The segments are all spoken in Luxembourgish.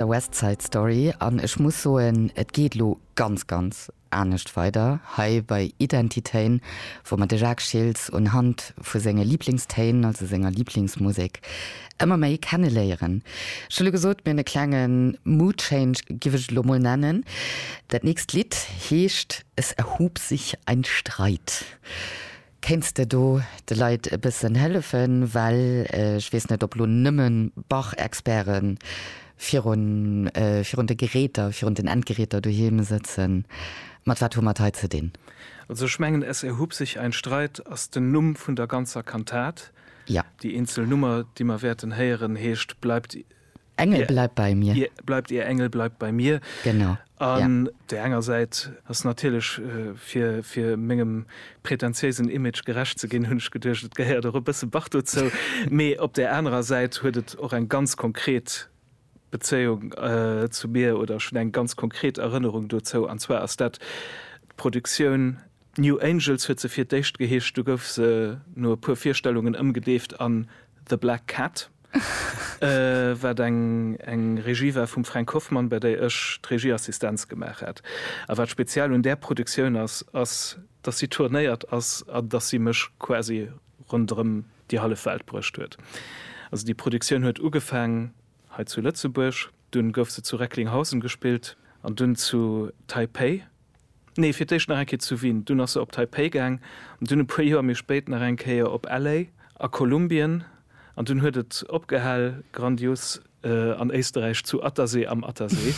The West Side Story an ech muss soen, et geet elo ganz, ganz anescht weider hei bei Identitéin, wou mer de Jacques Schiltz unhand vu senge Liblingstéin, also senger Liblingsmusek, ëmmer méi kenne léieren. Ech hu lo gesot, mir hunn e klenge Mood Change, giff ech et elo mol nennen. Dat nächst Lidd heescht Es erhob sich ein Streit. Kéints de do de Leit e bëssen hëllefen, well ech weess net ob lo nëmme Bach-Experte virun virun de Geräter, virun den Endgeräter doheem sëtzen. Mat wat hu mer et hei ze dinn? Also ech mengen Es erhub sich ein Streit ass den Numm vun der ganzer Kantat. Jo. Déi eenzel Nummer déi mer wäerten héieren heescht Bleibt Engel bleibt bei mir. Ier bleibt, Ier Engel bleibt bei mir. Genau. An der enger Säit ass natierlech, fir, fir mengem pretentiéisen Image gerecht ze ginn, hunn ech geduecht, et gehéiert och e bësse Bach dozou. Mee op där anerer Säit huet et och eng ganz konkret Bezéiung zu mir oder ech hunn eng ganz konkret Erënnerung dozou. An zwar ass dat d'Produktioun New Angels huet se fir d'éischt geheescht, du gouf se no e puer Virstellungen ëmgedeeft an The Black Cat, wat eng Regie war vum Frank Hoffmann, bei där ech d'Regieassistenz gemaach hat. A wat speziell un där Produktioun ass, ass, dass si tournéiert ass an dass si mech quasi ronderëm déi hallef Welt bruecht huet. Also déi Produktioun huet ugefaang hei zu Lëtzebuerg. Dunn gouf se zu Recklinghausen gespillt an dunn zu Taipei, nee fir d'éischt nach eng Kéier zu Wien, dunn ass se op Taipei gaang an dunn e puer Joer méi spéit nach eng Kéier op LA a Kolumbien an dunn huet et opgehal grandios an Éisterräich zu Attersee am Attersee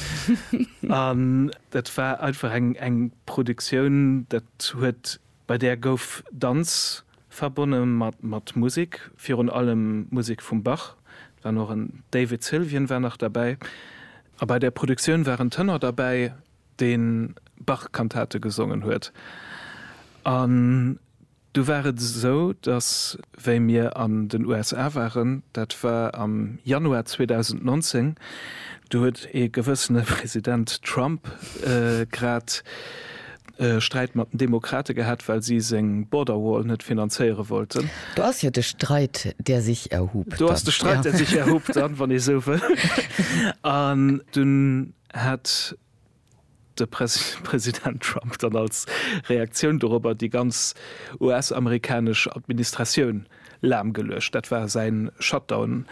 an dat war einfach eng Produktioun dat huet Bei där gouf Danz verbonne mat Musek, virun allem Musek vum Bach, et war nach en David Sylvian war nach derbäi, a bei där Produktioun war en Tenor derbäi, dee Bach-Kantate gesongen huet. An du war et esou, datt wéi mir an den USA waren, dat war am Januar 2019, do huet ee gewëssene President Trump grad e Sträit mat den Demokrate gehat, well si seng Border Wall net finanzéiere wollten. Do ass jo de Streit, der sich erhob. Do ass de Streit, der sich erhob, dann, wann ee esou wëll. An dunn hat de President Trump dann als Reaktioun dorobber déi ganz US-amerikanesch Administratioun lahmgeluecht. Dat war säi Shutdown.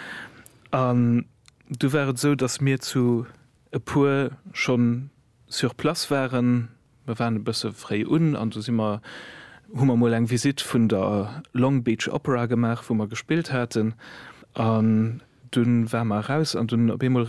An du war et esou, datt mir zu e puer schonn sur place waren. Mir waren e bësse fréi un an du si mer, hu mer mol eng Visitt vun der Long Beach Opera gemaach, wou mer gespillt haten. An dunn ware mer eraus an dunn op eemol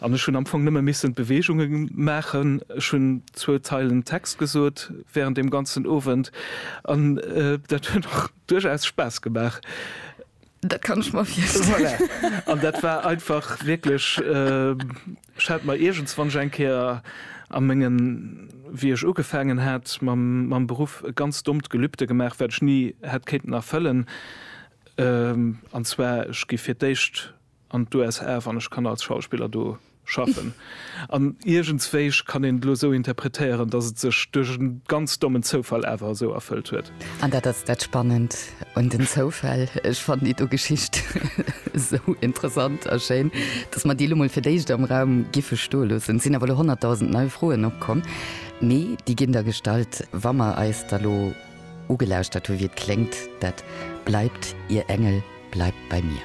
An ech hunn am Fong nëmme missen d'Beweegunge maachen. Ech hunn zwou Zeilen Text gesot während deem ganzen Owend, an dat huet och duerchaus Spaass gemaach. Dat kann ech mer virstellen. Voilà. An dat war einfach wierklech, ech hat mer iergends, wann ech eng Kéier a mengen, wéi ech ugefaangen hat mam Beruff, e ganz dommt Gelübde gemaach, wat ech ni hätt kéinten erfëllen, an zwar, ech gi fir d'éischt, an d'USA, wann ech kann als Schauspiller do schaffen. An iergendswéi, ech kann een elo esou interpretéieren, datt et sech duerch e ganz dommen Zoufall awer esou erfëllt huet. An dat ass dat Spannend un den Zoufäll. Ech fannen déi do Geschicht esou interessant a schéin, datt mer déi elo mol fir d'éischt am Raum giffe stoe loossen. Et sinn awer elo honnertdausend nei Froen opkomm, mee déi ginn da gestallt, wa mer eis da lo ugelauschtert hu wéi et kléngt dat Bleibt, Ihr Engel bleibt bei mir.